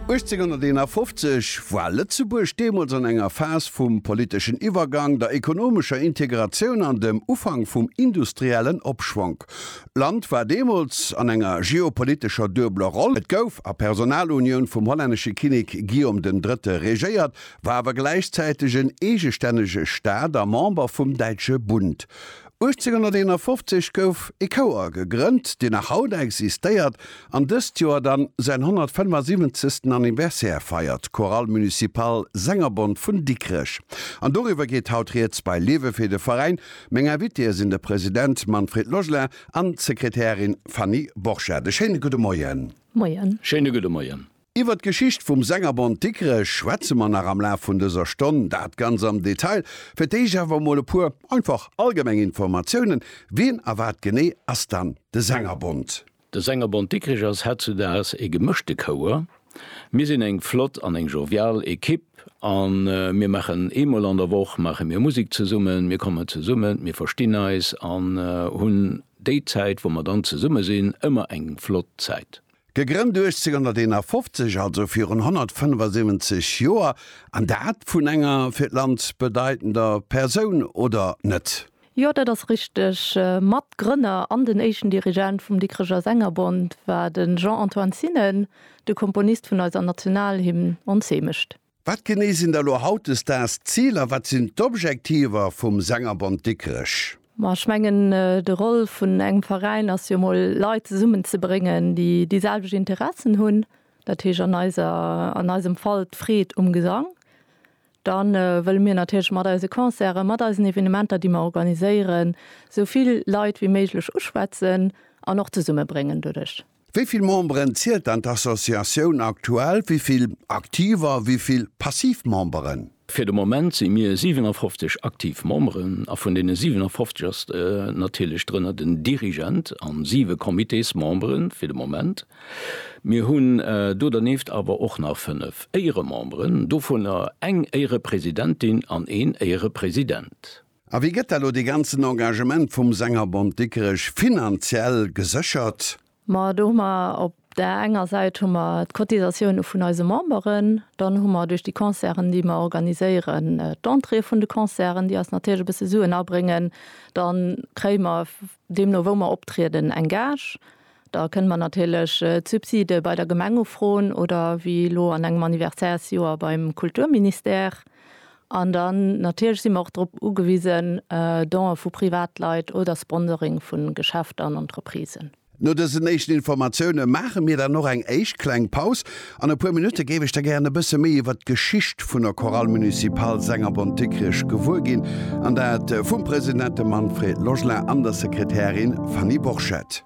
1851 war Lëtzebuerg deemools an enger Phas vum politeschen Iwwergang, der ekonomescher Integratioun an dem Ufank vum industriellen Opschwonk. D'Land war deemools an enger geopolitescher duebeler Roll, et gouf a Personalunioun vum hollännesche Kinnek Guillaume den Drëtte regéiert, war awer gläichzäiteg en eegestännege Staat a Member vum Däitsche Bund. 1851 gouf e Chouer gegrënnt, deen nach haut existéiert an dëst Joer dann säin 175. Anniversaire feiert, Chorale Municipale Sängerbond vun Dikrech. An doriwwer geet haut Rieds bei Lewe fir de Veräin. Meng Invitéë sinn de President Manfred Logelin an d'Sekretärin Fanny Borchert. E schéine gudde Moien. Moien. Schéine gudde Moien. Iwwert d'Geschicht vum Sängerbond Dikrech schwätze mer nach am Laf vun dëser Stonn, dat ganz am Detail. Fir d'éischt awer emol e puer einfach allgemeng Informatiounen, Wien a wat genee ass dann de Sängerbond? De Sängerbond Dikrech ass hetzudaags e gemëschte Chouer. Mir sinn eng flott an eng jovial Ekipp a mir maachen eemol an der Woch maache mir Musek zesummen. Mir kommen zesummen, mir verstinn eis an hunn déi Zäit, wou mer dann zesumme sinn, ëmmer eng flott Zäit. Gegrënnt 1851, also virun 175 Joer, an dat vun enger fir d'Land bedeitender Persoun, oder net? Jo, dat ass richteg. Matgrënner an den éischten Dirigent vum Dikreger Sängerbond war de Jean-Antoine Zinnen, de Komponist vun eiser Nationalhymn Ons Heemecht. Wat genee sinn da lo hautdesdaags d'Ziler? Wat sinn d'Objektiver vum Sängerbond Dikrech? Ma ech mengen, de Rôle vun engem Veräin ass jo mol Leit zesummen ze bréngen, déi déi selwecht Interessen hunn, dat heescht an eiser, an eisem Fall d'Freed um Gesang. Dann wëlle mir natierlech mat eise Concerten, mat eisen Evenementer, déi mer organiséieren, esou vill Leit wéi méiglech uschwätzen an och zesummebréngen doduerch. Wéi vill Memberen zielt dann d'Associatioun aktuell, wéi vill aktiv a wéi vill passiv Memberen? Fir de Moment si mir 57 aktiv Memberen a vun deene 57 ass natierlech drënner den Dirigent an siwe Comitésmembere fir de Moment. Mir hunn do dernieft awer och nach fënnef Éierememberen, dovunner eng Éierepresidentin an een Éierepresident. A wéi gëtt da lo dee ganzen Engagement vum Sängerbond Dikrech finanziell geséchert? Ma do hu mer op där enger Säit hu mer d'Cotisatioune vun eise Memberen, dann hu mer duerch déi Concerten, déi mer organiséieren, d'Entréeë vun de Concerten, déi eis natierlech e bësse Suen abréngen. Da kréie mer Deemno wou mer optrieden, eng Gage, da kënnen mer natierlech d'Subside bei der Gemeng ufroen oder wéi elo an engem Anniversärsjoer beim Kulturministère. An dann natierlech si mer och drop ugewisen, Donë vu Privatleit oder Sponsoring vu Geschäfter an Entreprisen. No dësen éischten Informatioune maache mir dann och eng éischt kleng Paus, An e puer Minutte géif ech der gären e bësse méi iwwert d'Geschicht vun der Chorale Municipale Sengerbond Dikrich gewuer ginn, an dat vum President, dem Manfred Logelin, an der Sekretärin Fanny Borchert.